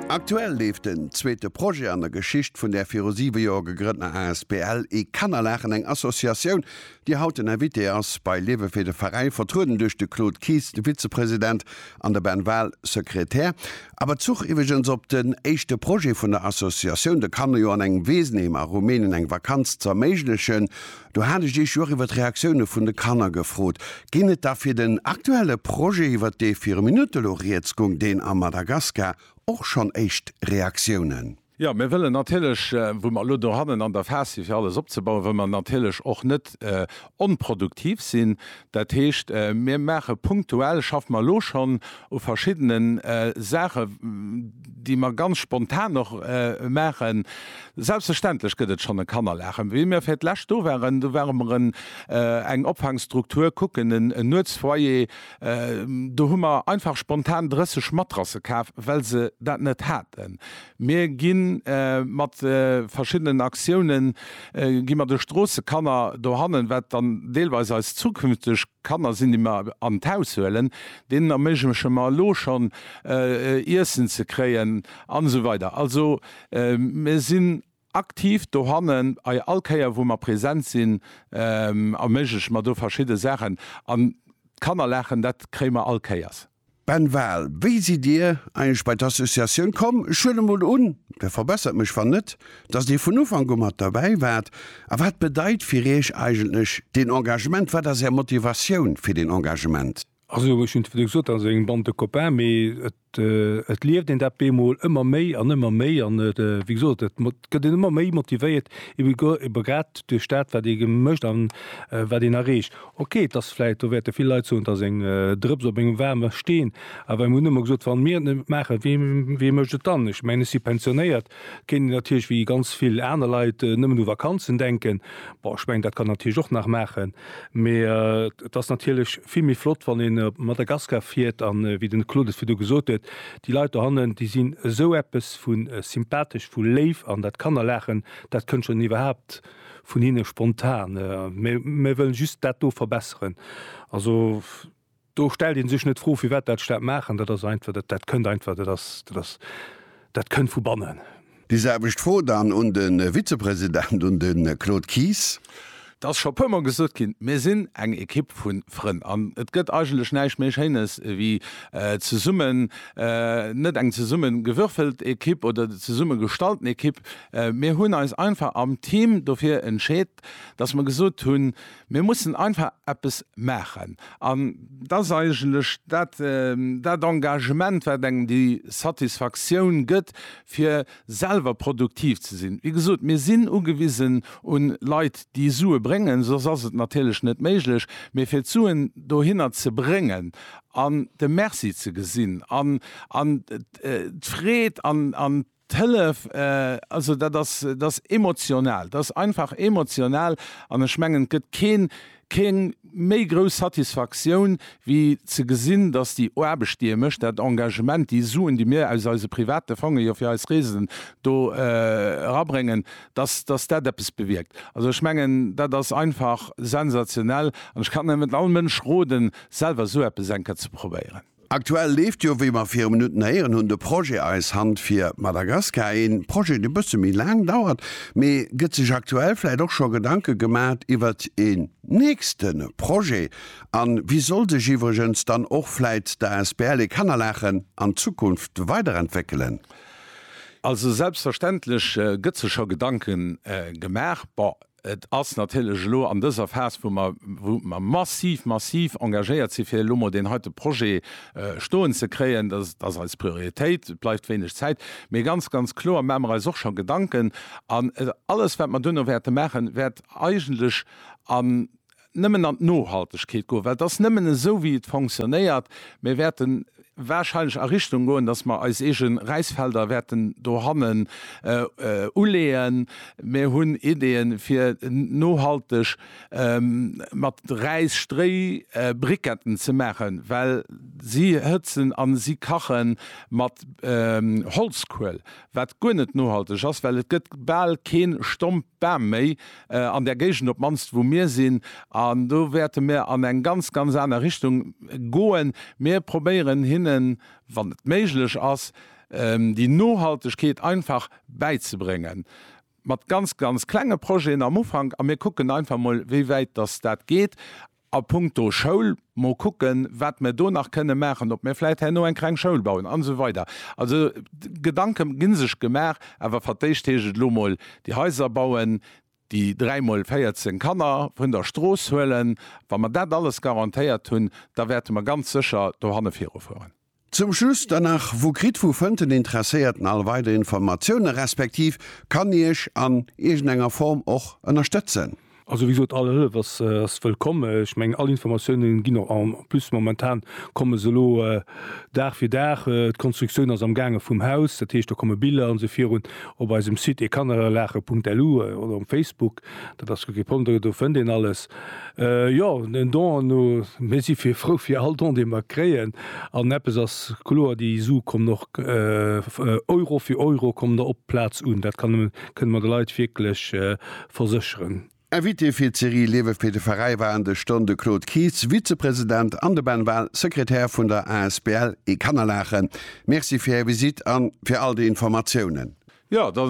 Aktuell leeft den zweete Projet an der Geschicht vun där viru 7 Joer gegrëntener asbl E Kannerlachen, eng Associatioun, déi haut den Invité ass bei Liewe fir de Veräi, vertrueden duerch de Claude Kies, de Vizepresident, an de Ben Wahl, Sekretär. A Bezuch iwweregens op den éischte Projet vun der Associatioun, de Kanner jo an engem Weesenheem a Rumänien eng Vakanz z'erméiglechen, Do hat ech Iech jo och iwwer d'Reaktioune vun de Kanner gefrot. Ginn et da fir den aktuelle Projet, iwwer dee vir e Minutt elo Rieds goung, deen am Madagaskar, och schonn éischt Reaktiounen? Jo, mir wëllen natierlech, wou mer elo dohannen an der Phas si fir alles opzebauen, wëll mer natierlech och net onproduktiv sinn. Dat heescht, mir maache punktuell, schaffe mer elo schonn u verschiddene Saachen, déi mer ganz spontan och maachen. Selbstverständlech gëtt et schonn e Kannerlager. Wéi mir fir d'lescht do waren, do ware mer eng Opfangsstruktur kucken, en Nuetsfoyer. Do hu mer einfach spontan 30 Matrasse kaf, well se dat net haten. Mir gi mat verschiddenen Aktioune gi mer de Stroossekanner dohannen, wat dann deelweis eis zukünfteg Kanner sinn, déi mer an d'Haus huelen, deenen erméigleche mer elo schonn Iessen ze kréien an esou weider. Also mir sinn aktiv dohannen, a all Kéier wou mer present sinn, erméigleche mer do verschidde Saachen an d'Kannerlaachen, dat kréie mer all Kéiers. Ben Wahl, Wéi sidd Dir eigentlech bei d'Associatioun komm? Ech huelen emol un, der verbessert mech wann net, datt Dir vun Ufank u mat derbäi waart. A wat bedeit fir Iech eigentlech deen Engagement? Wat ass Är Motivatioun fir deen Engagement? Also ech hunn et virdru gesot, dat ass eng Bande de copains, mee et lieft een dat bemol ëmmer méi an ëmmer méi an et, wéi gesot, et. gëtt een ëmmer méi motivéiert, ebe guer, ebe grad duerch dat, wat ee mécht a wat een erreecht. Ok, et ass vläicht, do wäerte vill Leit soen, et ass eng Drëps op engem waarme Steen, awer mir hunn ëmmer gesot, wann mir et net maachen, wee mécht et dann? Ech mengen, ech si pensionéiert, kéint een natierlech wéi ganz vill aner Leit nëmmen u Vakanzen denken. Bon, ech mengen, dat kann een natierlech och nach maachen, mä et ass natierlech vill méi flott, wann ee op Madagaskar fiert a wéi den Claude et virdu gesot huet, Déi Leit dohannen, déi sinn esou eppes vu sympathesch, vu léif, an dat Kannerlaachen, dat kënnt schonn iwwerhaapt vun hinne spontan. Mir wëllen just dat do verbesseren. Also, do stellt ee sech net d'Fro, firwat dat Staat maachen. Dat ass einfach, dat kënnt einfach, dat ass, dat ass, dat kënnt vu bannen. Déi selwecht Fro dann un de Vizepresident, un de Claude Kies. Et ass scho puermol gesot ginn, mir sinn eng Ekipp vu Frënn an et gëtt eigentlech näischt méi Schéines wéi zesummen, net eng zesumme gewürfelt Ekipp oder zesumme gestallten Ekipp. Mir hunn eis einfach am Team dofir entscheet, dass mer gesot hunn, Mir mussen einfach eppes maachen. An et ass eigentlech dat, dat Engagement, wat engem déi Satisfaktioun gëtt, fir selwer produktiv ze sinn. Wéi gesot, mir sinn ugewisen u Leit, déi Sue bréngen, soss ass et natierlech net méiglech. Mee fir d'Suen dohinner ze bréngen an de Merci ze gesinn an d'Freed an D'Hëllef, also dat ass, dat ass emotional, dat ass einfach emotional. An ech mengen, et gëtt keen, keng méi grouss Satisfaktioun, wéi ze gesinn, datt déi Aarbecht, déi ee mécht, dat Engagement, déi Suen, déi mir aus eise private Fonge jo fir eis Reesen do erabréngen, datt, datt dat eppes bewierkt. Also ech mengen, dat ass einfach sensationell. An ech kann nëmmen all Mënsch roden, selwer esou eppes eng Kéier ze probéieren. Aktuell leeft jo, wéi mer viru Minutten héieren hunn, de Projet Eis Hand fir Madagaskar, ee Projet, dee bësse méi laang dauert. Mee gëtt sech aktuell vläicht och scho Gedanke gemat iwwert een nächste Projet? A wéi soll sech iwwregens dann och vläicht d'asbl Et Kanner Laachen an Zukunft weiderentwéckelen? Also selbstverständlech gëtt sech scho Gedanken gemaach. Bon, Et ass natierlech elo an dëser Phas, wou mer, wou mer massiv, massiv engagéiert sinn, fir elo emol deen heite Projet stoen ze kréien, dass et ass eis Prioritéit, et bleift wéineg Zäit, mee ganz, ganz kloer maache mer eis och scho Gedanken an alles, wat mer duerno wäerte maachen, wäert eigentlech an nëmmen an d'Nohaltegkeet goen, well et ass nëmmen esou wéi et fonctionnéiert. Mir wäerte wahrscheinlech a Richtung goen, dass mer eis eege Räisfelder wäerten dohannen uleeën. Mir hunn Ideeën, fir nohalteg mat Räis Stréibriketten ze maachen, well si hëtzen a si kache mat Holzkuel, wat guer net nohalteg ass, well et gëtt bal kee Stomp Bam méi an där Géigend, op d'mannst wou mir sinn. An do wäerte mir an eng ganz, ganz aner Richtung goen. Mir probéieren hinnen, wann et méiglech ass, déi Nohaltegkeet einfach bäizebréngen. Mat ganz, ganz klenge Projeten am Ufank a mir kucken einfach mol, wéi wäit dass dat geet. A punkto Schoul, mol kucken, wat mer do nach kënnen maachen, ob mir vläit herno eng kleng Schoul bauen an esou weider. Also Gedanke gi sech gemaach, awer fir d'éischt heescht et elo mol déi Haiser bauen, déi dräi mol 14 Kanner vun der Strooss huelen. Wa mer dat alles garantéiert hunn, da wäerte mer ganz sécher dohanne virufueren. Zum Schluss dann nach, Wou kritt wou fënnt den Interesséierten all weider Informatiounen, respektiv kann Iech an iergend enger Form och ënnerstëtzen? Also wéi gesot, all Hëllef ass wëllkomm. Ech mengen, all Informatiounen ginn och, en plus momentan komme se elo Dag fir Dag, d'Konstruktioun ass amgaange vum Haus, dat heescht do komme Biller an esou virun op eisem Site ekannerelaachen.lu oder um Facebook, dat ass jo kee Problem, do fënnt een alles. Jo, en Don an o mir si fir frou fir all Don, dee mer kréien. An eppes ass kloer, déi Su kommen och Euro fir Euro kommen der op d'Plaz un. Dat kann, kënne mer de Leit wierklech versécheren. Invité fir d'Serie Liewe fir de Veräi waren dës Stonn de Claude Kies, Vizepresident, an de Ben Wahl, Sekretär vun der asbl Ekannerlachen. Merci fir Är Visite an fir all déi Informatiounen. Jo, da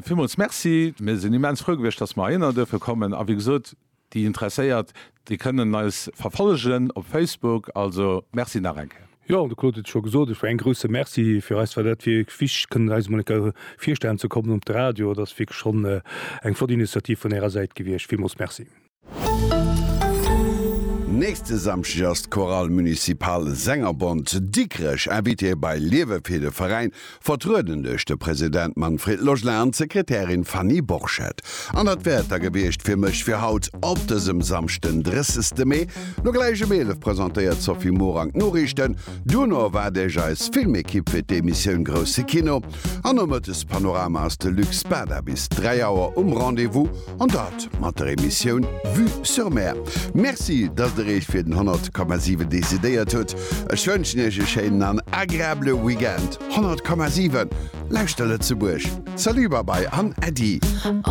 villmools Merci. Mir sinn immens frou gewiescht, dass mer heihinner duerfe kommen. A wéi gesot, déi Interesséiert, déi kënnen eis verfollegen op Facebook. Also Merci nach eng Kéier. Jo, de Claude huet et scho gesot, ech war een grouse Merci. Fir eis war dat wierklech wichteg, kënnen eis emol eng Kéier virstellen ze kommen op de Radio. Dat ass wierklech schonn eng flott Initiativ vun Ärer Säit gewiescht. Villmools Merci. Nächste Samschdeg ass d'Chorale Municipale Sängerbond Dikrech Invitée bei Liewe fir de Veräin, vertrueden duerch de President Manfred Logelin an d'Sekretärin Fanny Borchert. An dat wär et da gewiescht fir mech fir haut op dësem Samschd den 30 Mee. No gläich ëm 11 presentéiert d'Sophie Morang d'Noriichten, duerno erwaart Iech eis Filmekipp fir d'Emissioun Grousse Kino an Nomëttes Panorama ass de Luc Spada bis 3 Auer um Rendez-vous. An dat mat der Emissioun Vue sur Mer. Merci, dass der Iech fir den 100,7 decidéiert hutt. Ech wënschen Iech e schéinen an agreabele Weekend. 100,7, Lauschter Lëtzebuerg! Salut, Babai an Äddi!